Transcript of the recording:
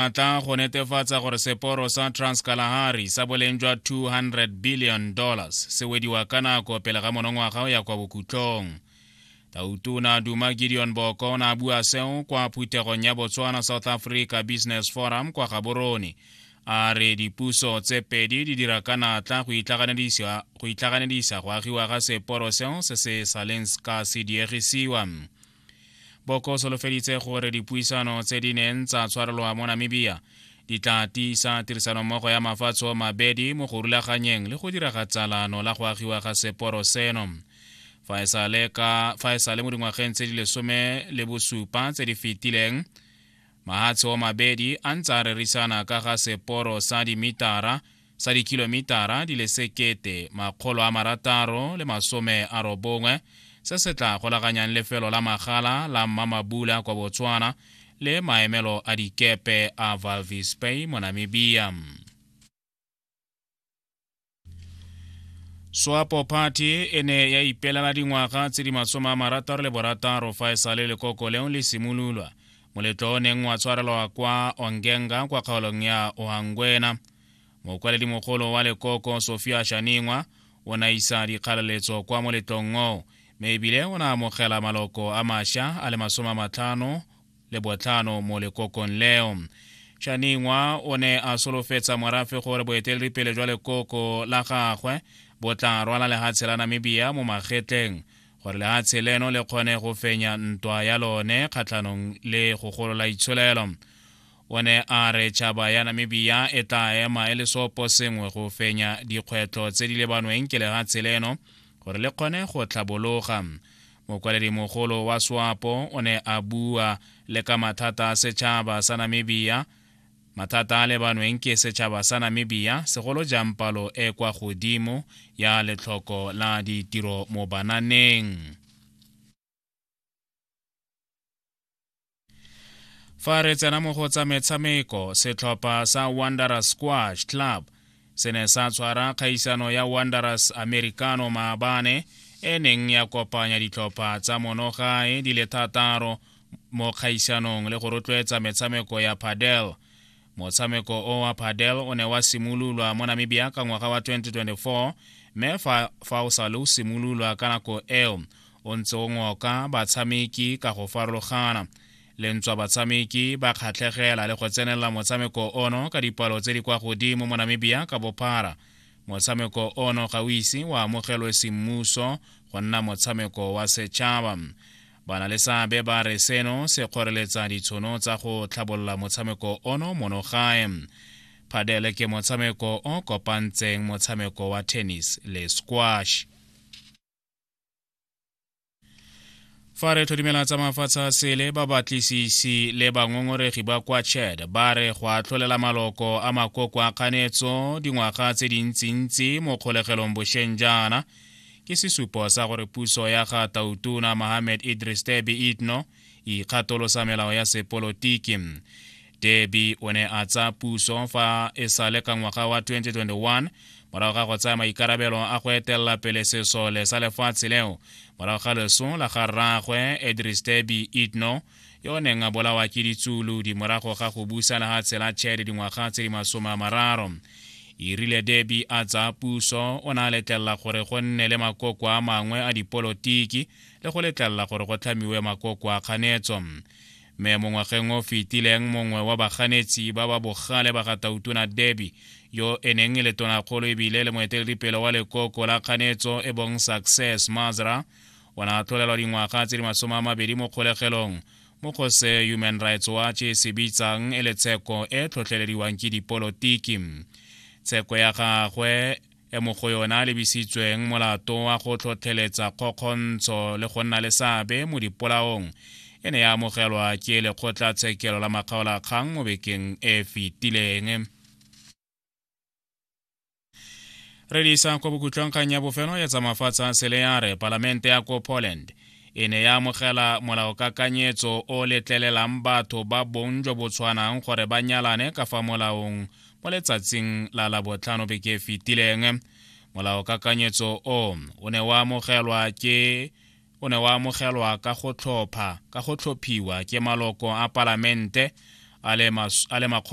a tla go netefatsa gore seporo sa transkalahari sa boleng jwa 200 billion dollars se wediwa ka nako pele ga monongwaga o ya kwa bokhutlong tautona duma gideon boko o ne a bua seo kwa phuthegong ya botswana south africa business forum kwa gaborone a re dipuso tse pedi di dira ka natla go itlhaganedisa go agiwa ga seporo seo se se saleng ka se diegisiwa boko solofeditse gore dipuisano tse di neng tsa tshwarelwa mo namibia di tla tiisa tirisanommogo ya mafatshe o mabedi mo go rulaganyeng le go diraga tsalano la go agiwa ga seporo seno fa e sale ka fa e sale mo dingwageng tse di lesome le bosupa tse di fetileng mahatshe o mabedi a ntse a rerisana ka ga seporo sa dimitara sa dikilomitara di le sekete makgolo a marataro le masome a robongwe se se tla golaganyang lefelo la magala la mmamabula kwa botswana le maemelo a dikepe a valvis bay mo namibia swapo party e ne ya ipelela dingwaga tse di masome a marataro le borataro fa e sa le lekoko leo le simololwa moletlo o neng wa tshwarelwa kwa ongenga kwa kgaolong ya ohangwena mokwaledi-mogolo wa lekoko sofia shaningwa o na isa dikgalaletso kwa moletlong oo mme ebile o na amogela maloko a masha a le masome a matlhano le botlhano mo lekokong leo shaningwa o ne a solofetsa morafe gore boeteledipele jwa lekoko la gagwe bo tla rwala lehatshe la namibia mo magetleng gore lehatshe leno le kgone go fenya ntwa ya lone kgatlhanong le go golola itsholelo o ne a re tšhaba ya namibia e tla ema e le sopo sengwe go fenya dikgwetlho tse di lebanweng ke lehatshe leno gore le kgone go tlhabologa mogolo wa swapo o ne a bua le ka mathata a setšhaba sa namibia mathata a lebanweng ke setšhaba sa namibia segolo jang palo e kwa godimo ya letlhoko la ditiro mo bananeng fa re tsena mo go tsa metshameko setlhopha sa wanderer squash club se ne sa tshwara kgaisano ya wanderers americano maabane e neng ya kopanya ditlhopha tsa monogae di le thataro mo kgaisanong le go rotloetsa metshameko ya padel motshameko o wa padel o ne wa simololwa mo namibia ka ngwaga wa 2024 mme fa, fa o sale o simololwa ka nako eo o ntse o ngoka batshameki ka go farologana lentswa batshameki ba kgatlhegela le go tsenelela motshameko ono ka dipalo tse di kwa godimo mo namibia ka bophara motshameko ono ga o ise wa amogelwe semmuso go nna motshameko wa setšhaba Banaleseabe ba re seno se kgoreletsa ditshono tsa go tlhabolola motshameko ono mono gae. Padele ke motshameko o kopantseng motshameko wa tennis le squash. fa re tlhodimela tsa mafatshe a sele ba batlisisi le bangongoregi ba kwa chad ba re go atlholela maloko a makoko a kganetso dingwaga tse dintsintsi mo kgolegelong bošeng jaana ke sesupo sa gore puso ya ga tautona mohammed idris debi itno e ikgatolosa melao ya sepolotiki debi o ne a tsa puso fa e sa le ka ngwaga wa 2021 morago ga go tsaya maikarabelo a go etelela pele sesole sa lefatshe leo morago ga leso la ga rraagwe idris debi itno yo o neng a bolawa ke ditsulu di morago ga go busana ga tshela chad dingwaga tse di masome a mararo e rile debi a tsaya puso o ne a letlelela gore go nne le makoko a mangwe a dipolotiki le go letlelela gore go tlhamiwe makoko a kganetso mme mo ngwageng o fetileng mongwe wa baganetsi ba ba bogale ba ga tautona debi yo e neng e le tonakgolo ebile le moeteledipele wa lekoko la kganetso e bong success mazra o ne a tlholelwa dingwaga tse di masome a mabedi mo kgolegelong mo go se human rights watch e se bitsang e le tsheko e tlhotlhelediwang ke dipolotiki tsheko ya gagwe e mo go yona a lebisitsweng molato wa go tlhotlheletsa kgokgontsho le go nna le seabe mo dipolaong e ne ya amogelwa ke lekgotlatshekelo la makgaolakgang mo bekeng e fetileng re di isang kwa bokutlwang kgang ya bofelo ya tsamafatsa sele ya re palamente ya ko poland e ne ya amogela molaokakanyetso o letlelelang batho ba bong jo bo tshwanang gore ba nyalane ka fa molaong mo letsatsing la labotlhano beke e fetileng molaokakanyetso o o ne wa amogelwa ke o ne wa amogelwa ka go tlhopha ka go tlhophiwa ke maloko a palamente a le makgolo